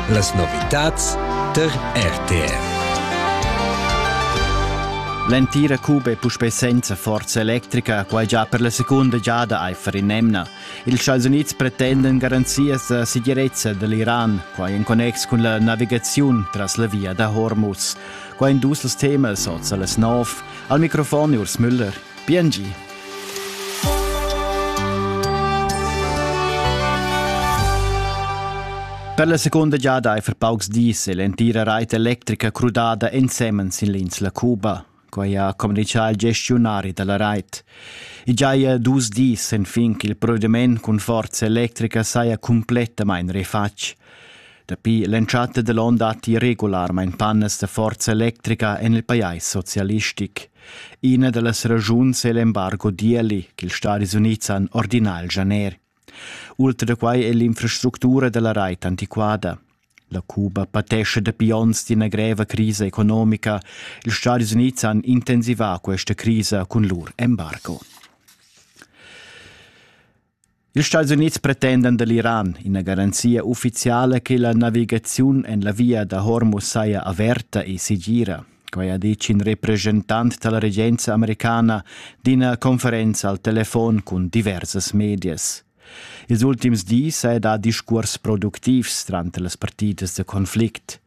Las novitads tar RTR. L'entira cuba è puspè senza forza electrica, quai già per la segunda giada aifer in emna. Ils Stati Unids pretendan garanzias da segirezza da l'Iran, quai en connex cun la navigaziun tras la via da Hormuz. Quai in dus temas oz las nov. Al microfon Urs Müller. Biengi. Per la seconda giada ei for paucs dis l'entira reit electrica crudada ensemen sin l'insla Cuba. Quei ha communicau il gestionari dalla reit. E già è dus dis sen fin ch'il provvediment cun forza electrica saja completamain refatg. Dapi l'entschatta da l'onn datti regularmain pannas da forza electrica en il pajais socialistic. Ina da las ragiuns è l'embargo d'ieli ch'ils Stadis Unids han ordinà al Janer. Ultra da quai è l'infrastructura da la rait antiquada. La Cuba patescha dapi onns d'ina greva crisa economica. Ils Stadis Unids han intensivà questa crisa cun lur embargo. Ils Stats Unids pretendan da l'Iran ina garanzia uffiziala che la navigaziun en la via da Hormuz saja averta e segira. Quai ha ditg in represchentant da la regenza americana d'ina conferenza al telefon cun diversas medias. Ils ultims dis è dà discurs productivs tranter las partidas da conflict.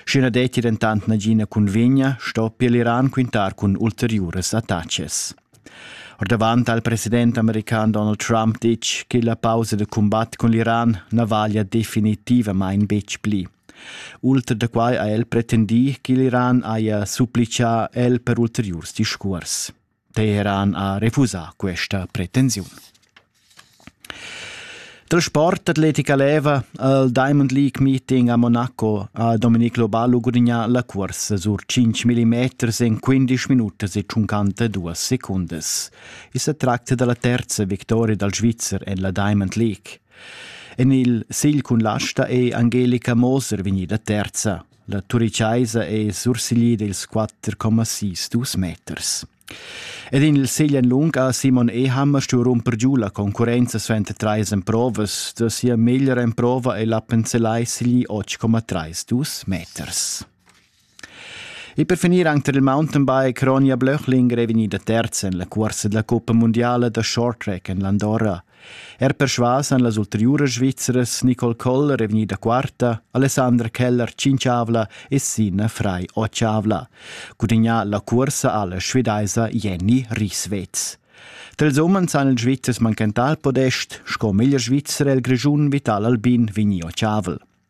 Sch'i na detti dentant nagina cunvegna, stoppia l'Iran quintar cun ulteriuras attacas. Ordavant ha il president american Donald Trump ditg che la pausa da cumbat cun l'Iran na valia definitivamain betg pli. Ultra da quai ha el pretendì che l'Iran haja supplitgà el per ulteriurs discurs. Teheran ha refusà questa pretensiun. Dal sport atletica leva il Diamond League meeting a Monaco ha Dominique Lobalu gudignà la cursa sur 5 mm en 15 minutas e 52 secundas. I sa tracta dalla terza victoria dal Svizzer en la Diamond League. En il sigl cun l'asta è Angelica Moser vegnida terza. La turichaisa è sursiglida ils 4,62 meters. Ed in il segl en lung ha Simon Eham stuì rumper giu la concurrenza suenter trais emprovas. Da sia meglra emprova è l'Appenzellai sigli 8,3 dus meters. E per finir anche per il mountainbike Ronja Blöchlinger è vegnida terza en la cursa della Coppa Mondiale da short track en l'Andorra. Er persvas han las ulteriuras Svizras Nicole Koller è vegnida quarta, Alessandra Keller cinçavla e Sina Frei ochavla. Gudignà la cursa alla svidaisa Jenny Rieswetz. Tals umens han il Svizzers manchentà il podest, sco meglier Svizzer el Grischun vital Albin Vigni Ocavel.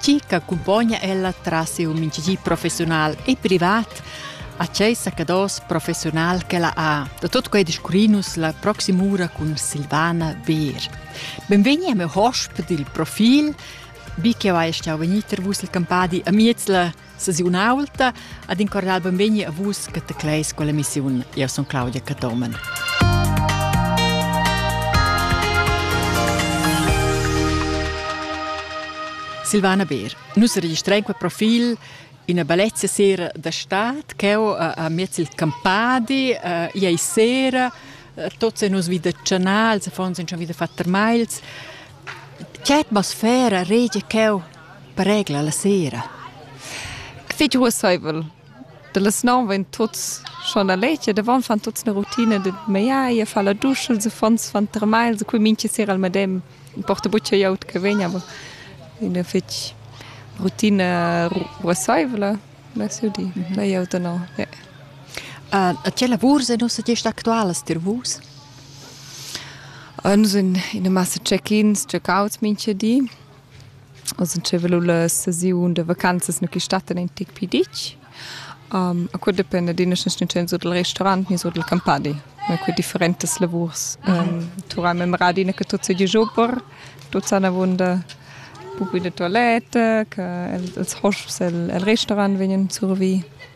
Chi ch'accumpogna ella tras siu mintgigi professiunal e privat a tgei saccados professiunal ch'ella ha. Da tot quei discurrinus la proxima ura cun Silvana Beer. Benvegni a meu hosp dil Profil, bi che vai stau vegnir vus il campadi a Mietzler Sesiun aulta ad in cordial benvegni a vus che te cleis quella missiun. Io son Claudia Catomen. Silvana Beer. Nus registrain quel profil ina bellezia sera da stad che ho a miez il campadi, iei sera, tots nos vi da canals, affons in schon wieder fatter mails. Che atmosfera regia che Pregla la sera. Que fetg ruosseivel. Da las nov vain tuots schon a leger, davant fan tuots üna rutina da meglier, fa la duscha, els affons fan termai, els cui mincha sera al medem. Ün porta bucca glieud che vegn, aber üna fetg rutina ruosseivla, vess eu dir. La glieud da no, ja. E tge lavurs en nossa gest actualas tir vus? Nus in ina massa check-ins, check-outs mincha di. Oz nun velu la sesiun da vacanzas nu chi stattan in tic pi dich. Um, a quel dependa d'üna sustentaziun sur dal restaurant ni sur dal campadi. Ma que differentas lavurs. Um, tu hai memorà adina che tuot seigi giò per, tuot san avuonda propi da toiletta, che els hosps el, el restaurant vegnan survi.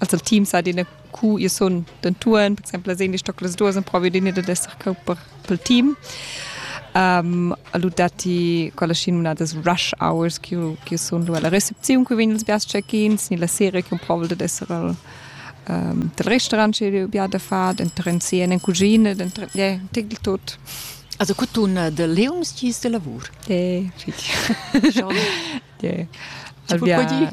also team sa dine ku ihr sun den Touren, per exemple sehen die Stockles durch und provi dine da esser cau per pel team. Um, allu dati quella scin una des rush hours che che sun lu alla recepziun che vegn els bias check-ins ni la sera che provi da esser al um, del restaurant che bia da far den trencien en cucina den ja tigl tot Also cutun eh, de Leons gis de lavur. Eh, richtig. Schon. yeah. Alvia,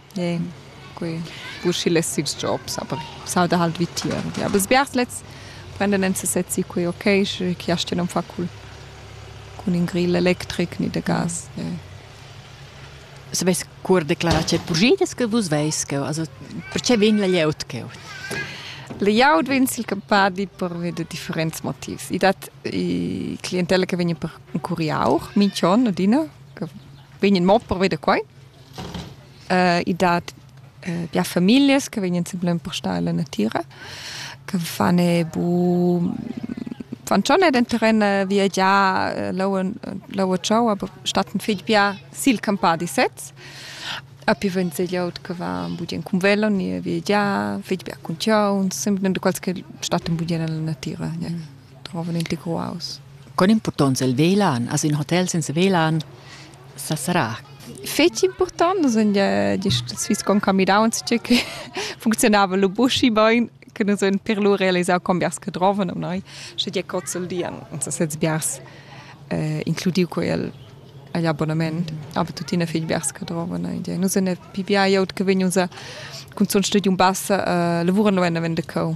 Ie, quei bu schi less ils jobs, aber s'auda halt vitier. Ja, aber sbiars lets prenden en sesez si quei okay, sche chi astga non far cul cun in grill electric ni de gas. Ie. As vess cur declarà che pugidas che vus veis cheu, also perche vegn la glieud cheu? La glieud vegn sil campadi pervi da differents motivs. I dat i clientella che vegn per in curiau, minch'on adina, che vegn mo pervi da quai. uh, i dat uh, bia familias che vegnan sempre empostare alla natira, che fanno bu fan schon den terren via già laua ciao aber statten fig bia sil campadi sets a pi vent se gliaut che va budien cum velo ni via già fig bia cun ciao sempre de quals che statten budien alla natira ja. trovan integraus con importanza il velan as in hotel senza velan sa sarà fetg important nus gest Swiss con camidauns tge che funzionava lo buschi bein che nus un per lur realisau con biars che droven um noi sche die cozzel dian uns das jetzt biars eh, includiu quel agli abbonament aber tuttina fich biars che droven noi nus ne pivia iot che vegn usa cun zun studi un bassa eh, lavuran lo en vende co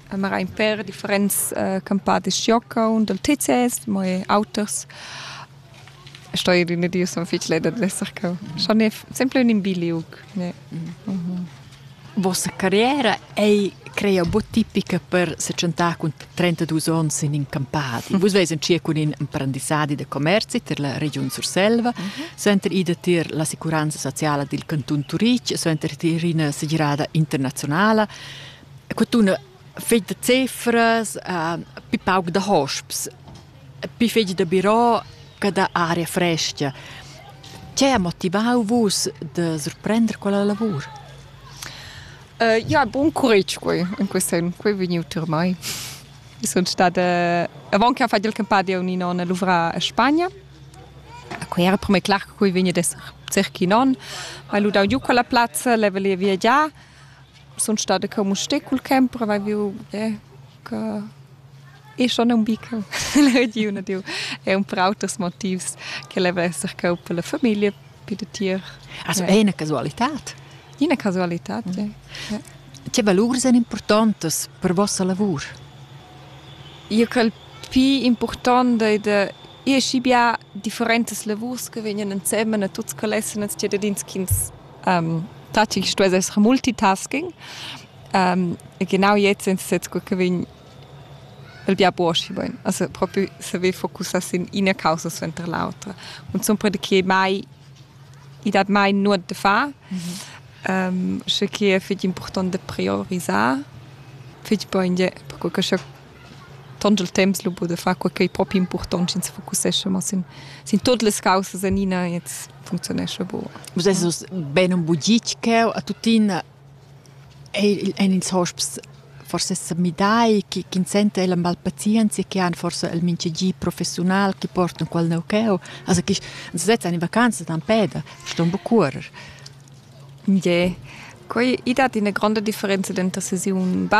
mera in per differents uh, campadis jocaun dal TCS, mo e auters. Sto ir in diu son fich leda d'esser cau. Schon è sempre un imbiliuc. Yeah. Mm -hmm. Vossa carriera ei creia bo tipica per se centar cun 32 ons in in campadi. Vus veis in cir cun in imprendissadi de commerci ter la regiun Surselva, senter ida tir la sicuranza sociala dil canton Turic, senter tir ina segirada internazionala. que tuna fich da cefras, pi pauc da hosps, pi fich da birò che da aria frescha. Tgei ha motivau vus da surprender quella lavur? ja, bun curegi quei in quei sen, quei ei vegniu tier mei. Sun stada avant che ha fatto il campadi un non a luvrar a Spagna. Quei era per me clar che quei vegni d'esser cerchi non, ma lu dau giu quella plazza, level e viagiar sun stada co Musté cul camper, aveva viu eh, che e schon un bico l'ediuna diu è un per auters motivs che leva esser co per la famiglia per de tier also è una casualità una casualità mm. ja. ja. che valur sono importanti per vostra lavor io col più importante de e schi bia differentes lavors che vegnan insieme a tutti che lesson als cittadins ch'ins Tati stuess esser multitasking. genau jetzt sind es jetzt gut gewesen, il bia buoschi bain. Also propi saver focussar sin ina causa suenter l'autra. Und sempre che mai i dat mai nuot da far. Mhm. Sche che è fitg important da priorisar, fitg bun per che tont il temps lu buca da far quei ch'ei propi impurtont sch'ins focussescha mo sin, sin tut las caussas enina e jetzt functionescha buca. Vus esses bein un bugitg cheu a tuttina ein ils hosps forse sa midai che ch'ins senta ella mal pazienzia che han forse il mintgagi professional che portan quel neu cheu also che sezzan in vacanza dann peda ston bu curer. Ie Quei i dat ina gronda differenza denter sesiun